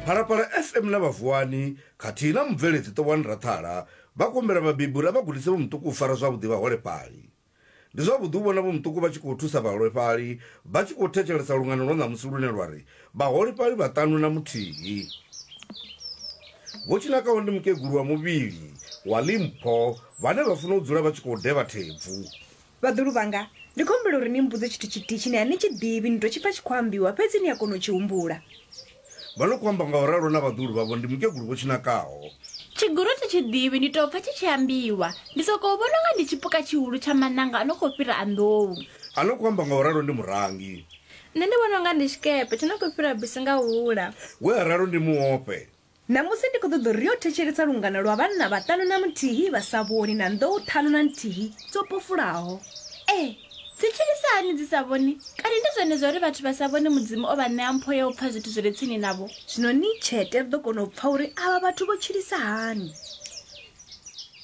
Phalaphala FM na Vhavuwani khathihi na mubveledzi Ṱowani Rathala vha khou humbela vhabebi uri a vha gudise vho muṱuku u fara zwavhuḓi vhaholefhali. Ndi zwavhuḓi u vhona vho muṱuku vha tshi khou thusa vhaholefhali vha tshi khou thetshelesa lungano lwa ṋamusi lune lwa ri Vhaholefhali Vhaṱanu na Muthihi. Vho Tshinakaho ndi mukegulu wa muvhili wa Limpho vhane vha funa u dzula vha tshi khou devha thebvu. Vhaḓulu vhanga, ndi khou humbela uri ni mmbudze tshithu tshithihi tshine a ni tshi ḓivhi, ni tou tshi pfa tshi khou ambiwa, fhedzi ni a kona u tshi humbula. Vha no khou amba nga u ralo na vhaḓuhulu vhavho, ndi mukegulu vho Tshinakaho. Tshigulu thi tshi ḓivhi, ndi tou pfa tshi tshi ambiwa. Ndi sokou vhona u nga ndi tshipuka tshihulu tsha maṋanga a no khou fhira a nḓou. A no khou amba nga u ralo ndi Murangi. Nṋe ndi vhona u nga ndi tshikepe tsho no khou fhira bisi nga hula. We a ralo ndi Muofhe. Ṋamusi ndi khou ṱoḓa uri ri yo thetshelesa lungano lwa vhanna vhaṱanu na muthihi vha sa vhoni na nḓou ṱhanu na nthihi dzo pofulaho. Ee, dzi tshilisa hani dzi sa vhoni? Kani ndi zwone zwa uri vhathu vha sa vhoni Mudzimu o vha ṋea mpho ya u pfa zwithu zwi re tsini navho? Zwino ni tshete ri ḓo kona u pfa uri avha vhathu vho tshilisa hani.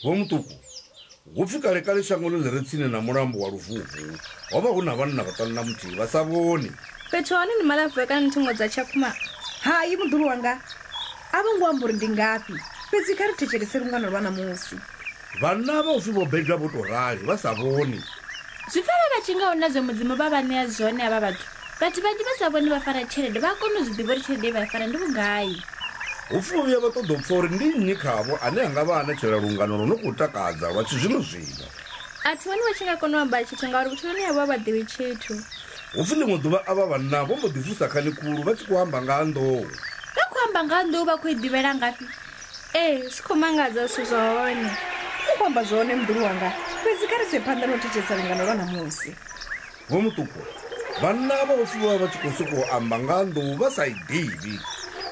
Vho Muṱuku, Hu pfi kale-kale shangoni ḽi re tsini na mulambo wa Luvhuvhu ho vha hu na vhanna vhaṱanu na muthihi vha sa vhoni. Fhethu ha hone ndi malavhura kana nthengo dza tshakhuma? Hai, muḓulu wanga. A vho ngo amba uri ndi ngafhi. Fhedzi kha ri thetshelese lungano lwa ṋamusi. Vhanna avha hu pfi vho bebwa vho tou rali, vha sa vhoni. Zwi pfelelela tshi nga hu na zwe Mudzimu vha vha ṋea zwone havha vhathu? Vhathu vhanzhi vha sa vhoni vha fara tshelede vha a kona u zwi ḓivha uri tshelede ye vha i fara ndi vhugai. Hu pfi vho vhuya vha ṱoḓa u pfa uri ndi nnyi khavho ane a nga vha a ṋetshela lungano lwo no khou takadza lwa tshizwino-zwino. A thi vhoni vha tshi nga kona u amba tshithu ngauri vhutshiloni havho a vha ḓivhi tshithu. Hu pfi ḽiṅwe ḓuvha avha vhanna vho mbo ḓi vusa khani khulu vha tshi khou amba nga ha nḓou. Vha khou amba nga ha nḓou vha khou i ḓivhela ngafhi? Ee, zwi khou mangadza zwithu zwa hone. U khou amba zwone muḓulu wanga, fhedzi kha ri ise phanḓa na u thetshelesa lungano lwa ṋamusi. Vho Mutupo, vhanna avha ofhiwa vha tshi khou sokou amba nga ha nḓou vha sa i ḓivhi.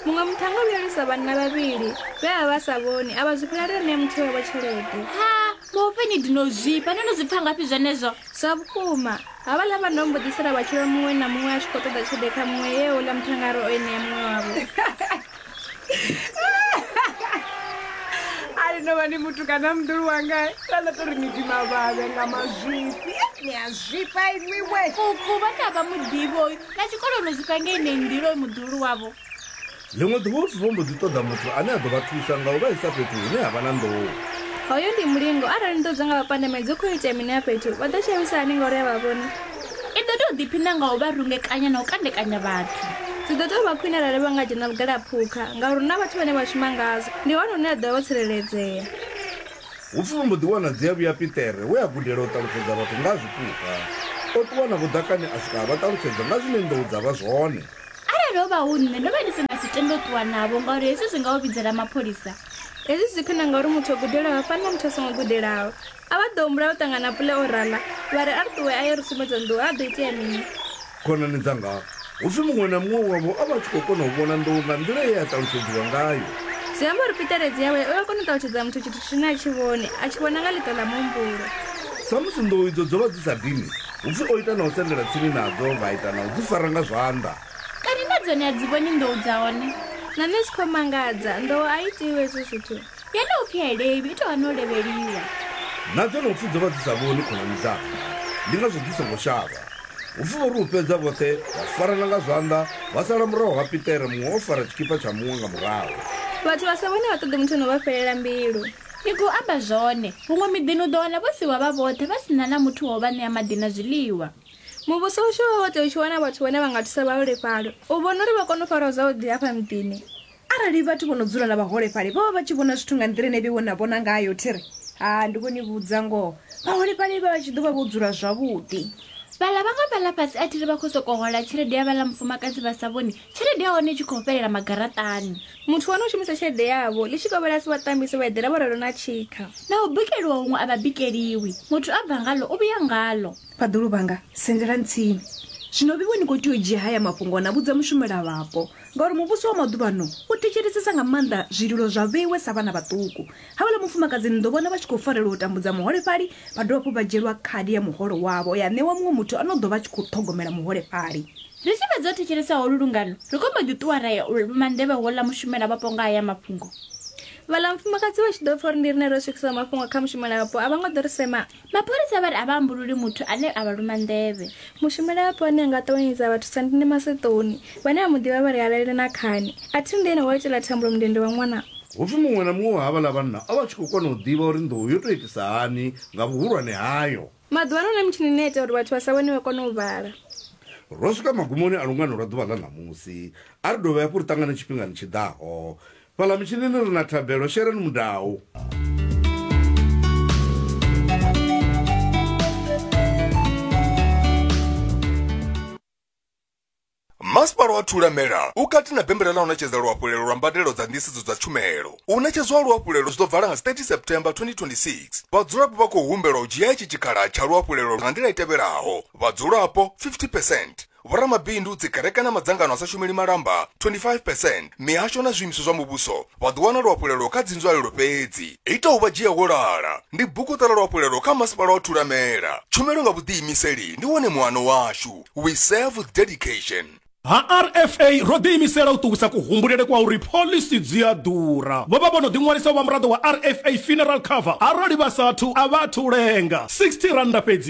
Muṅwe muthu ha ngo vhuya a lwisa vhanna vhavhili vhe vha vha vha sa vhoni a vha zwifhela a tou ṋea muthihi wavho tshelede. Ha, vhofhe ni ḓi no zwifha. No no zwi pfa ngafhi zwenezwo? Zwa vhukuma, havhaḽa vhanna vho mbo ḓi sala vha tshi lwa muṅwe na muṅwe a tshi khou ṱoḓa tshelede kha muṅwe ye houḽa muthangari o i ṋea muṅwe wavho. ali no vha ni muthu kana muḓulu wanga kana to ri ni tima vhavhe nga mazwifhi ni a zwifha inwiwe kuku vha na vha muḓivhi oyu na tshikoloni zwi kange ine nḓilo i muḓulu wavho ḽiṅwe ḓuvha u vho mbo ḓi ṱoḓa muthu ane a ḓo vha thusa nga u vha isa fhethu hune ha vha na nḓou hoyo ndi mulingo arali nḓo dza nga vha pandamedzi u khou itea mini a fhethu vha ḓo tshelisahani ngauri a vha vhoni I ḓo tou ḓiphina nga u vha rungekanya na u kandekanya vhathu. Zwi ḓo tou vha khwine arali vha nga dzhena vhugalaphukha, ngauri hu na vhathu vhane vha shuma ngazwo. Ndi hone hune vha ḓo vha vho tsireledzea. Hu pfi vha mbo ḓi wana dziavhuya Piṱere we a gudela u ṱalutshedza vhathu nga ha zwipuka. O ṱuwa navho ḓakani a swika a vha ṱalutshedza nga zwine nḓou dza vha zwone. Arali ho vha hu nṋe, ndo vha ndi si nga si tende u ṱuwa navho ngauri hezwi zwi nga u vhidzela mapholisa. Hezwi zwi khwine ngauri muthu o gudelaho ha fani na muthu a songo gudelaho. A vha ḓo humbula u ṱangana na Pule o rala, vha ri, A ri ṱuwe a ye ri sumbedze nḓou, ha ḓo itea mini? Khonani dzanga, hu pfi muṅwe na muṅwe wavho a vha a tshi khou kona u vhona nḓou nga nḓila ye ya ṱalutshedziwa ngayo. Zwi amba uri Peter Redzi yawe u a kona u ṱalutshedza muthu tshithu tshine a tshi vhoni, a tshi vhona nga ḽiṱo ḽa muhumbulo. Samusi nḓou idzo dzo vha dzi sa dini, hu pfi o ita na u sendela tsini nadzo, vha ita na u dzi fara nga zwanḓa. Kani na dzone a dzi vhoni nḓou dza hone? Na nṋe zwi khou mangadza, nḓou a i itiwi hezwo zwithu. Yeneyo pfialeivhi i tou vha na u levheliwa. Na dzenopfi dzo vha dzi sa vhoni khonani dzanga, ndi ngazwo dzi songo shavha. Hu pfi vho ri u fhedza vhoṱhe vha farana nga zwanḓa, vha sala murahu ha Piṱere muṅwe o fara tshikipa tsha muṅwe nga murahu. Vhathu vha sa vhoni a vha ṱoḓi muthu na u vha fhelela mbilu. Ni khou amba zwone. Huṅwe miḓini u ḓo wana vho siiwa vha vhoṱhe vha si na na muthu wa u vha ṋea maḓi na zwiḽiwa. Muvhuso washu wo vha wo tea u tshi wana vhathu vhane vha nga thusa vhaholefhali u vhona uri vha kone u farwa zwavhuḓi hafha muḓini. Arali vhathu vho no dzula na vhaholefhali vho vha vha tshi vhona zwithu nga nḓila ine vhe vho na vhona ngayo, thi ri, Ha, ndi khou ni vhudza ngoho, vhaholefhali vha vha tshi ḓo vha vho dzula zwavhuḓi. Vhaḽa vhaṅwe vha ḽa fhasi, a thi ri vha khou sokou hola tshelede ya vhaḽa mufumakadzi vha sa vhoni, tshelede ya hone i tshi khou fhelela magaraṱani. Muthu wa no shumisa tshelede yavho, ḽitshikovhela a si wa ṱambise, wa eḓela vho ralo na tshikha. Na u bikeliwa huṅwe a vha bikeliwi, muthu a bva ngaḽo u vhuya ngaḽo. Vhaḓulu vhanga, sendelani tsini. Zwino vhe vho ni khou tea u dzhia haya mafhungo na vhudza mushumelavhapo, Ngauri muvhusi wa maḓuvhano u thetshelesesa nga maanḓa zwililo zwa vheiwe sa vhana vhaṱuku. Havhala mufumakadzi ni ḓo vhona vha tshi khou farelwa u tambudza muholefhali, vha dovha hafhu vha dzhielwa khadi ya muholo wavho ya ṋewa muṅwe muthu a no ḓo vha a tshi khou ṱhogomela muholefhali. Ri tshi fhedza u thetshelesa holu lungano, ri khou mbo ḓi ṱuwa ra ya u luma nḓevhe houḽa mushumelavhapo nga haya mafhungo. Vhaḽa vhafumakadzi vha tshi ḓo pfa uri ndi riṋe ro swikisa mafhungo kha mushumelavhapo, a vho ngo ḓo ri sema. Mapholisa vha ri a vha ambululi muthu ane a vha luma nḓevhe. Mushumelavhapo ane a nga ṱavhanyedza a vha thusa ndi Mme Maseṱoni. Vhane vha mu ḓivha vha ri ha lalele na khani. A thi nḓeni wa itela Thambulo mundende wa ṅwana. Hu pfi muṅwe na muṅwe wa havhaḽa vhanna o vha a tshi khou kona u ḓivha uri nḓou yo tou itisa hani nga vhuhulwane hayo. Maḓuvha ano hu na mitshini ine ya ita uri vhathu vha sa vhone vha kone u vhala. Ro swika magumoni a lungano lwa ḓuvha ḽa ṋamusi. A ri dovhe hafhu ri ṱangane tshifhingani tshi ḓaho. Fhaḽa mutshinini ri na thabelo, sheleni mudau. Masipala wa Thulamela u kati na bembela ḽa u ṋetshedza luhafhulelo lwa mbadelo dza nḓisedzo dza tshumelo. U ṋetshedzwa ha luhafhulelo zwi ḓo vala nga 30 September 2026. Vhadzulapo vha khou humbelwa u dzhia itshi tshikhala tsha luhafhulelo nga nḓila i tevhelaho, vhadzulapo 50 percent, vhoramabindu, dzikereke na madzangano a sa shumeli malamba 25 percent, mihasho na zwiimiswa zwa muvhuso vha ḓo wana luhafhulelo kha dzinzwalelo fhedzi. Ita u vha dzhia wo lala ndi bugu Ṱola Luhafhulelo kha Masipala wa Thulamela. Tshumelo nga vhuḓiimiseli ndi wone muano washu. We serve with dedication. Ha RFA, ro ḓiimisela u ṱuwisa kuhumbulele kwa uri phoḽisi dzi a ḓura. Vho vha vho no ḓiṅwalisa u vha muraḓo wa RFA Funeral Cover arali vha sa athu a vha athu u lenga. R60 fhedzi.